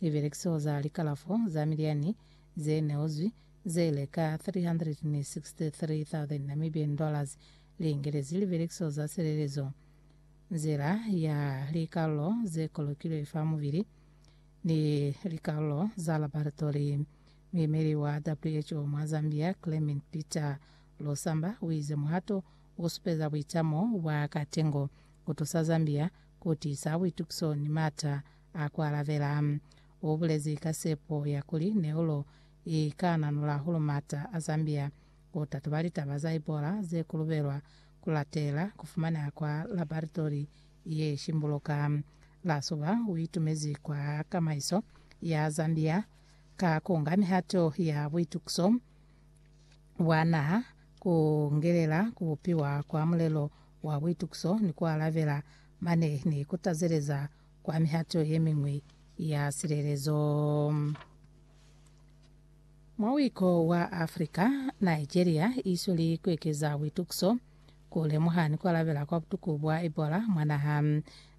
Libelekiso za likalafo za miliani ze neozwi ze le ka N363,000, Namibian dollars, li ingelezi libelekiso za silelezo, nzila ya likalulo ze kolokilwe fa mubili, ni likalulo za labaratory. Muimeli wa who mwa Zambia, Clement Peter Losamba, u ize muhato u supeza buitamo bwa katengo ku tusa Zambia ku tiisa buitukiso ni m'ata A ku alabela, u bulezi ka sepo ya kuli neulo i ka nanula hulu m'ata a Zambia. U tatuba litaba za Ebola ze kulubelwa ku latela ku fumaneha kwa labaritori ye shimbuluka. La suba u itumezi kwa kamaiso ya Zambia ka ku nga mihato ya buitukiso bwa naha, ku ngelela ku bupiwa kwa mulelo wa buitukiso ni ku alabela mane ni ku tazeleza kwa mihato ye miñwi ya silelezo. Mwa wiko wa Afrika, Nigeria i sweli ku ekeza buitukiso ku lemuha ni ku alabela kwa butuku bwa Ebola mwa naha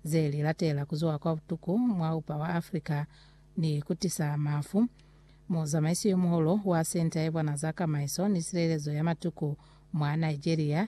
ze li latela ku zuha kwa butuku mwa upa wa Afrika ni ku tisa mafu. Muzamaisi yo muhulu wa Senta ye Bona za Kamaiso ni Silelezo ya Matuku mwa Nigeria,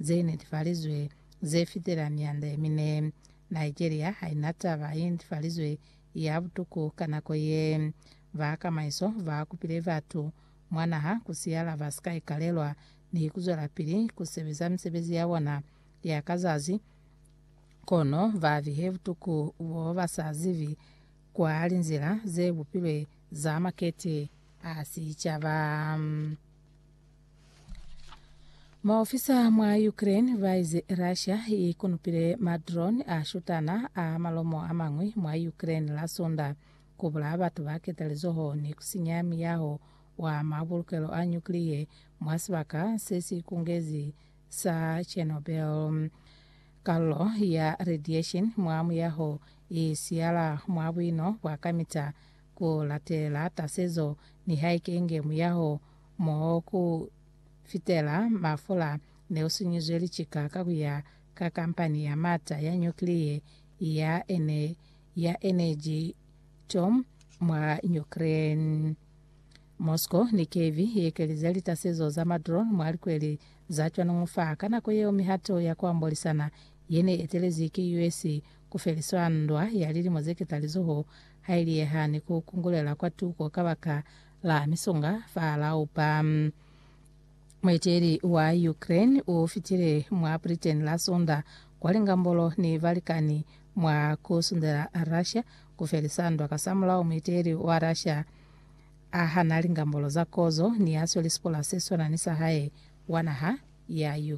ze netefalizwe ze fitela mianda ye mine. Nigeria ha i na taba ye netefalizwe ya butuku ka nako ye. Ba kamaiso ba kupile batu mwa naha ku siyala ba si ka ikalelwa ni ku zwelapili ku sebeza misebezi ya bona ya ka zazi, kono ba bihe butuku bo ba sa zibi kwa linzila ze bupilwe za makete a sicaba. Maofisa mwa Ukraine baize Russia ikunupile madrone a shutana a malomo amañwi mwa Ukraine la Sunda, kubulaya batu ba ketalizoho ni kusinya miyaho wa mabulukelo a nyukliye mwa sibaka sesikungezi sa Chernobyl. Kalulo ya radiation mwa muyaho i siyala mwa buino bwa kamita ku latela tasezo nihaike inge muyaho Moho ku fitela mafula ne u sinyizwe licika ka ku ya ka kampani ya mata ya nyukliye ya ene ya Energytom mwa Ukraine. Moscow ni Kyiv i ekelize litasezo za madrone mwa likweli za cwanuñu fa ka nako yeo mihato ya ku ambolisana ye ne etelezi ki US ku feliswa ndwa ya lilimo ze ketalizoho ha i liyeha ni ku kungulela kwa tuko kabaka la misonga fa laupa. Mueteli wa Ukraine u fitile mwa Britain la Sonda kwa lingambolo ni balikani mwa ku sundela Russia ku felisa ndwa. Kasamulaho, mueteli wa Russia a hana lingambolo za kozo ni ya sweli sipola se swana ni sa hae wa naha ya Ukraine.